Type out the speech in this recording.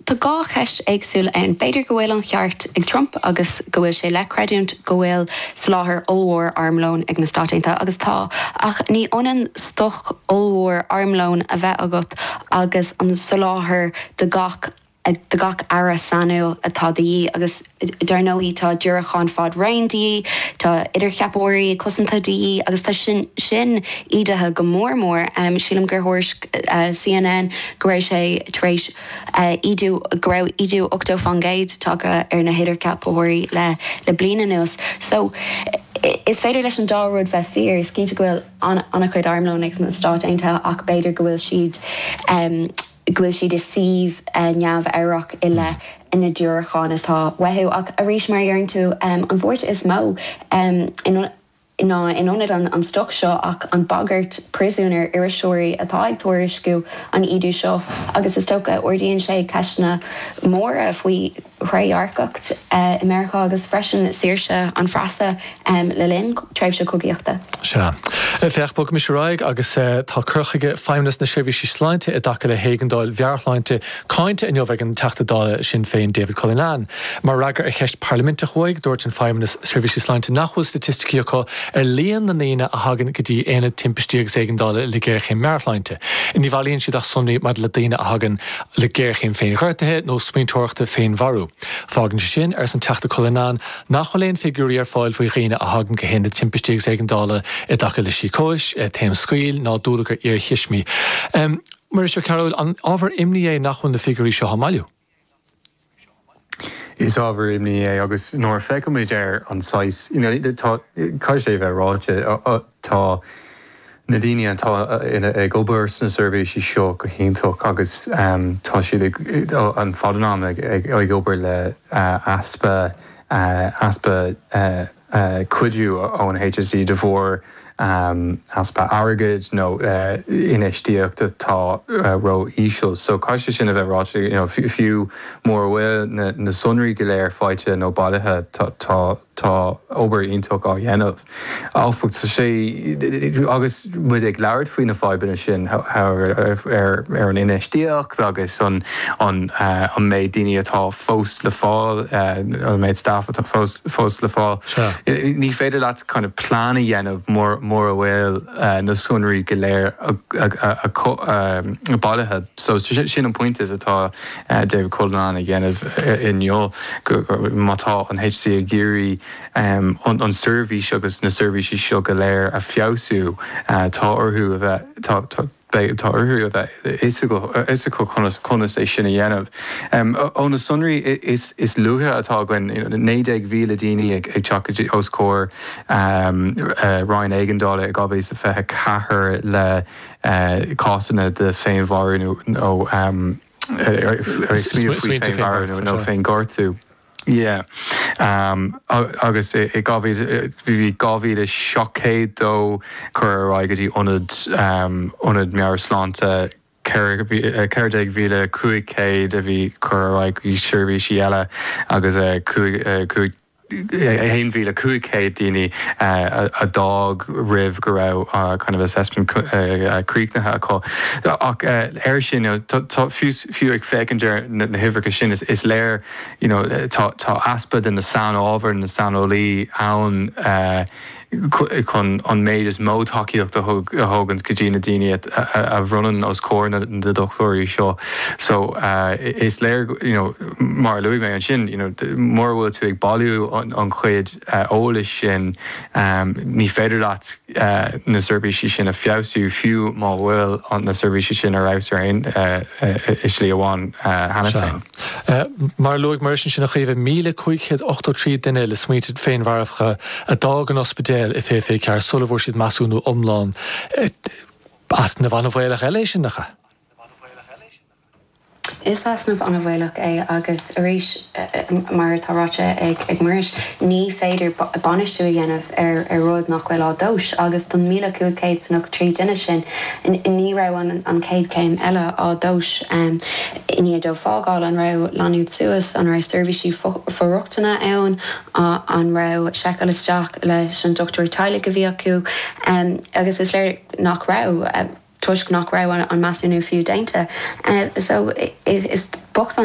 Tá dhá cheist éagsúil ann. B'fhéidir go bhfuil an cheart ag Trump agus go bhfuil sé le creidiúint go bhfuil soláthar ollmhór armlóin ag na Stáit Aontaithe, agus tá, ach ní ionann stoc ollmhór armlóin a bheith agat agus an soláthar do gach, do gach earra sainiúil atá de dhíth agus. Dar ndóigh, tá diúracáin fad raoin de dhíth, tá idircheapóirí cosanta de dhíth agus tá sin ídithe go mór mór. Sílim gur thuairisc CNN go raibh sé tar éis ídiú, go raibh ídiú ochtó faoin gcéad tagtha ar na hidircheapóirí le bliain anuas. So, is féidir leis an dá rud bheith fíor. Is cinnte go bhfuil an-chuid armlóin ag na Stáit Aontaithe ach b'fhéidir go bhfuil siad. go bhfuil siad i suíomh neamhámharach i leith na ndiúracán atá uathu. Ach arís, mar a deireann tú, an bhuairt is mó ná ní ionann an stoc seo ach an bhagairt príosúin ar iriseoirí atá ag tuairisciú an ídithe seo agus is dócha ardaíonn sé ceisteanna móra faoi thrédhearcacht i Meiriceá agus freisin saoirse an phreasa le linn tréimhse cogaíochta. Sea. Féach, bogaimis ar aghaidh agus tá cur chuige Feidhmeannacht na Seirbhíse Sláinte i dtaca le héigeandáil mheabhairshláinte cáinte inniu ag an Teachta Dála Sinn Féin David Cullinane. Mar fhreagra ar cheist pharlaiminteach uaidh, dúirt an Feidhmeannas Seirbhíse Sláinte nach bhfuil staitisticí acu ar líon na ndaoine a thagann go dtí Aonad Timpistí agus Éigeandála le géarchéim mheabhairshláinte. Ní bhailíonn siad ach sonraí maidir le daoine a thagann le géarchéim féinghortaithe nó smaointeoireachta féinmharú. Fágann sé sin, arsa an Teachta Cullinane, nach bhfuil aon figiúirí ar fáil faoi dhaoine a thagann go hAonad Timpistí agus Éigeandála i dtaca le síocóis, taom scaoill ná dúlagar iarthuismidh. Muiris Ó Cearbhaill, An ábhar imní é nach bhfuil na figiúirí seo á mbailiú? Is ábhar imní é agus nuair a feicimid ar an saghas, tá, caithfidh sé a bheith ráite, tá na daoine atá ag obair sna seirbhísí seo go hiontach agus tá siad ar fad an am ag obair le easpa, easpa cuidiú ón HSE de bharr easpa airgid nó infheistíocht atá ró-íseal. So caithfidh sé sin a bheith ráite, you know, fiú mura bhfuil na sonraí go léir faighte nó bailithe, tá, tá, tá obair iontach á dhéanamh, áfach. Agus. muid ag labhairt faoi na fadhbanna sin, ar an infheistíocht agus an méid daoine atá fós le fáil, an méid staff atá fós le fáil. Ní féidir leat kind of plean a dhéanamh mura bhfuil na sonraí go léir bailithe. So sin an pointe atá David Cullinane a dhéanamh inniu, má tá an HSE ag iarraidh, Chun an tseirbhís agus na seirbhísí seo go léir a feabhsú, tá orthu a bheith tá orthu a bheith fhios acu conas é sin a dhéanamh. Ó na sonraí is luaithe atá againn, 19,000 daoine ag teacht os comhair Roinn Éigeandála i 2024 le cásanna de féinmharú nó smaointe faoi féinmharú nó féinghortú. yeah agus 2700 dóibh cuireadh ar aghaidh go dtí ionad ionad meabhairshláinte 14500 a bhí cuireadh ar aghaidh go dtí seirbhísí eile agus 5 5 1500 daoine a d'fhág roimh go raibh kind of assessment críochnaithe acu ach air sin you know tá fiú ag féachaint ar na huimhreacha sin is léir you know tá easpa de na sainábhair, na saineolaí ann chun an méid is mó tacaíochta a thabhairt go dtí na daoine a bhronnann os comhair na dochtúirí seo. So is léir you know mar a luaigh mé ansin you know mura bhfuil tú ag bailiú an chuid eolais sin ní féidir leat na seirbhísí sin a feabhsú fiú má bhfuil na seirbhísí sin ar fheabhas ar aon slí amháin cheana féin. Mar a luaigh Muiris ansin, a Chaoimhe, míle cúig chéad ochtó trí duine le smaointe féinmharfacha a d'fhág an ospidéal i fiche fiche ceathair sula bhfuair siad measúnú iomlán easnamh an-bhaolach eile é sin, nach ea? Is easnamh an-bhaolach é agus arís, mar atá ráite ag Muiris, ní féidir bainistiú a dhéanamh ar rud nach bhfuil á dtomhas agus don míle cúig chéad is a ochtó trí duine sin, ní raibh an chéad chéim eile á dtomhas. I ndiaidh dóibh fágáil, an raibh leanúint suas, an raibh seirbhísí for-rochtana ann, an raibh seiceáil isteach leis an dochtúir teaghlaigh a bhí acu? Agus is léir nach raibh, toisc nach raibh an measúnú fiú déanta. So is bocht an.